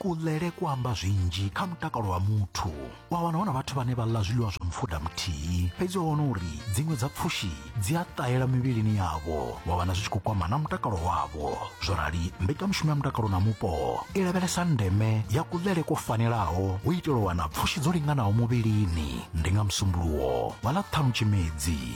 kulele ku amba zwinzhi kha mutakalo wa muthu wa wana hu na vhathu vhane vha ḽa zwiḽiwa zwa mupfuda muthihi fhedzi wa wana uri dziṅwe dza pfushi dzi a ṱahela mivhilini yavho wa wana zwi tshi khou kwama na mutakalo wavho zwo rali mbekanyamushumo ya mutakalo na mupo i lavhelesa ndeme ya kulele ko fanelaho u itela u wana pfushi dzo linganaho muvhilini ndi nga musumbuluwo wa ḽa ṱhanu tshimedzi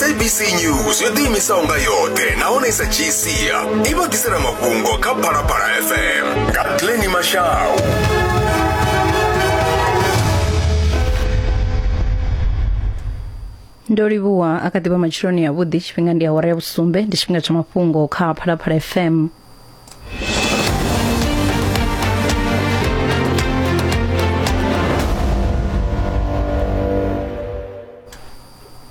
sabc news yo ḓiimisaho nga yoṱhe nahone i sa dzhii sia i vha ḓisela mafhungo kha phalaphala fm nga tleni mashau ndo livhuwa a kha ḓivha matsheloni avhuḓi tshifhinga ndi awara ya vhusumbe ndi tshifhinga tsha mafhungo kha phalaphala fm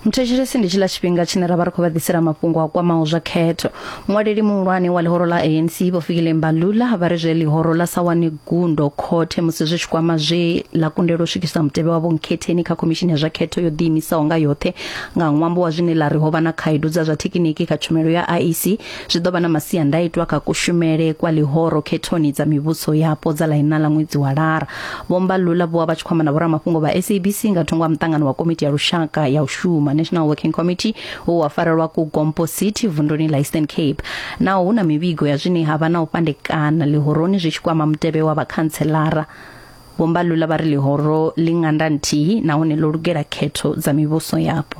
muthetshelesi ndi tshila tshifhinga tshine ra vha ri khou vha ḓisela mafhungo a kwamaho zwa khetho muṅwaleli muhulwane wa ḽihoro ḽa anc vho fikile mbalula vha ri zwe ḽihoro ḽa sa wane gundo khothe musi zwi tshi kwama zwe ḽa kundelwa u swikisa mutevhe wavho nkhetheni kha khomishini ya zwa khetho yo ḓiimisaho nga yoṱhe nga ṅwambo wa zwine ḽa ri ho vha na khaedu dza zwa thekiniki kha tshumelo ya iec Zwi ḓo vha na masiandaitwa kha kushumele kwa ḽihoro khethoni dza mivhuso yapo dza ḽaina ḽa ṅwedzi wa Lara. Vho Mbalula vho vha vha tshi khou amba na vhoramafhungo vha SABC nga thungo ha muṱangano wa komiti ya lushaka ya u shuma National Working Committee wo wa farelwa ku Gompo City vunduni ḽa Eastern Cape. Naho hu na mivhigo ya zwine ha vha na u fhandekana ḽihoroni zwi tshi kwama mutevhe wa vhakhantselara, Vho Mbalula vha ri ḽihoro ḽi nganda nthihi nahone ḽo lugela khetho dza mivhuso yapo.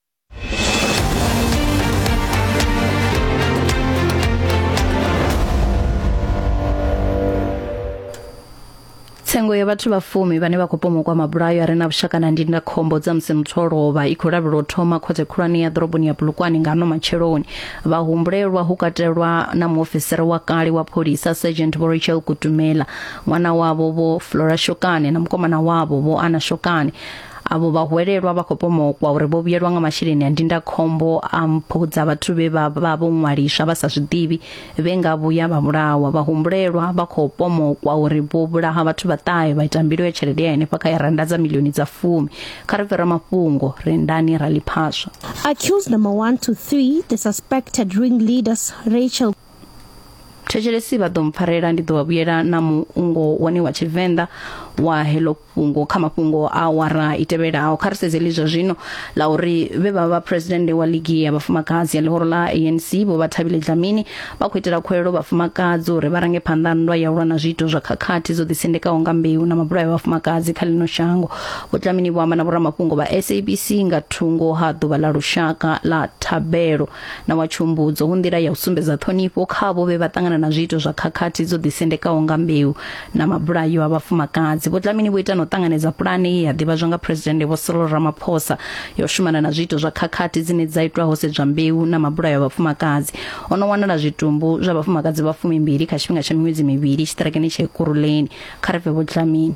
tsengo ya vhathu vha fumi vhane vha khou pomokwa mabulayo a re na vhushaka na ndindakhombo dza musi muthu o lovha i khou lavhelwa u thoma khothe khulwane ya ḓoroboni ya bulukwane nga ano matsheloni vhahumbulelwa hu katelwa na muofisiri wa kale wa pholisa sergeant vho rachel kutumela ṅwana wavho vho flora shokane na mukomana wavho vho ana shokane avho vhahwelelwa vha khou pomokwa uri vho vhuyelwa nga masheleni a ndindakhombo a mpho dza vhathu vhe vha vha vho ṅwaliswa vha sa zwiḓivhi vhe nga vhuya vha vhulawa vhahumbulelwa vha khou pomokwa uri vho vhulaha vhathu vhaṱahe vha ita mbilo ya tshelede ya henefha kha ya randa dza milioni dza fumi kha ri fhira mafhungo rendani ra ḽiphaswa accused number 1 to 3 the suspected ringleaders Rachel thetshelesi vha ḓo mpfarela ndi ḓo vha vhuyela na muungo wone wa tshivenḓa wa heḽo fhungo kha mafhungo a wara i tevhelaho kha ri sedze lizwa zwino la uri vhe vha vha president wa ligi ya vhafumakadzi ya ḽihoro ḽa ANC vho vha Thabile Dlamini vha khou itela khuwelelo vhafumakadzi uri vha range phanḓa nndwa ya ulwa na zwiito zwa khakhathi dzo ḓisendekaho nga mbeu na mabulayo vhafumakadzi kha ḽino shango vho Dlamini vho amba na vhoramafhungo vha SABC nga thungo ha ḓuvha ḽa lushaka ḽa thabelo na wa tshumbudzo hu nḓila ya u sumbedza ṱhonifho kha vho vhe vha ṱangana na zwiito zwa khakhathi dzo ḓisendekaho nga mbeu na mabulayo a vhafumakadzi vho Dlamini vho ita na u ṱanganedza pulane ye ya ḓivhadzwa nga phuresidennde vho Cyril Ramaphosa ya u shumana na zwiito zwa khakhathi dzine dza itwa ho sedzwa mbeu na mabulayo a vhafumakadzi o no wanala zwitumbu zwa vhafumakadzi vha fumimbili kha tshifhinga tsha miṅwedzi mivhili tshiṱirakeni tsha Ekurhuleni kha ri bve vho Dlamini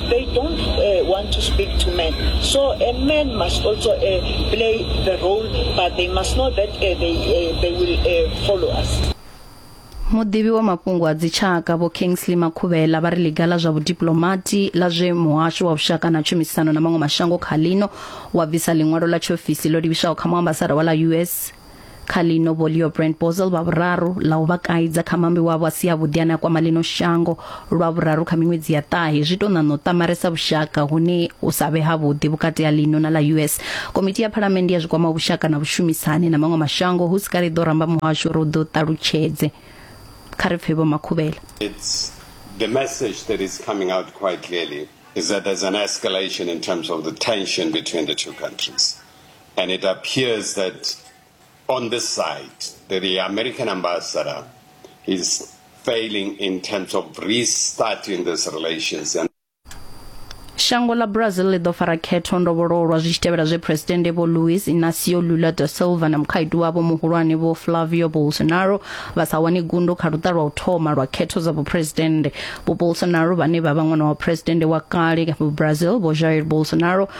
they don't uh, want to speak to men. So a man must also uh, play the role, but they must know that uh, they, uh, they will uh, follow us. muḓivhi wa mafhungo a dzitshaka vho kingsley makhuvhela vha ri ḽiga ḽa zwa vhudiplomati ḽa zwe muhasho wa vhushaka na tshumisano na maṅwe mashango kha lino wa bvisa ḽiṅwalo ḽa tshiofisi ḽo livhiswaho kha muambasada wa ḽa us kha ḽino vho leo brand bozel vha vhuraru ḽa u vha kaidza kha mambi wavho a si a vhuḓi ane a kwama ḽino shango lwa vhuraru kha miṅwedzi ya ṱahe zwi tou ṋaṋa u ṱamaresa vhushaka hune u sa vhe havhuḓi vhukati ha ḽino na ḽa us komiti ya phalamende ya zwi kwama vhushaka na vhushumisani na maṅwe mashango hu si kale ḓo ramba muhasho uri u ḓo ṱalutshedze kha ri pfe vho makhuvhela It's the message that is coming out quite clearly is that there's an escalation in terms of the tension between the two countries. And it appears that on this side, the American ambassador is failing in terms of restarting these relations. And Shango ḽa Brazil ḽi ḓo fara khetho ndovhololo lwa zwi tshi tevhela zwe Phresidennde Vho Luiz Inácio Lula da Silva na mukhaedu wavho muhulwane Vho Flavio Bolsonaro vha sa wane gundo kha luṱa lwa u thoma lwa khetho dza vhuphresidennde. Vho Bolsonaro vhane vha vha ṅwana wa phresidennde wa kale wa Brazil Vho Jair Bolsonaro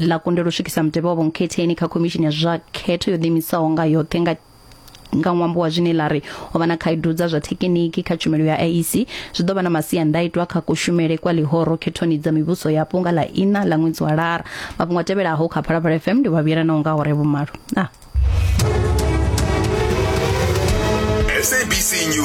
ḽa kundelwa u swikisa mutevhe wa vhonkhetheni kha khomishini ya zwa khetho yo ḓiimisaho nga yoṱhe nga nga ṅwambo wa zwine ḽa ri o vha na khaedu dza zwa thekiniki kha tshumelo ya IEC zwi ḓo vha na masiandaitwa kha kushumele kwa ḽihoro khethoni dza mivhuso yapo nga ḽa ina ḽa ṅwedzi wa lara mafhungo a tevhelaho kha phalaphala fm ndi vhavhuyelanaho nga hore vhumalo ah. SABC News.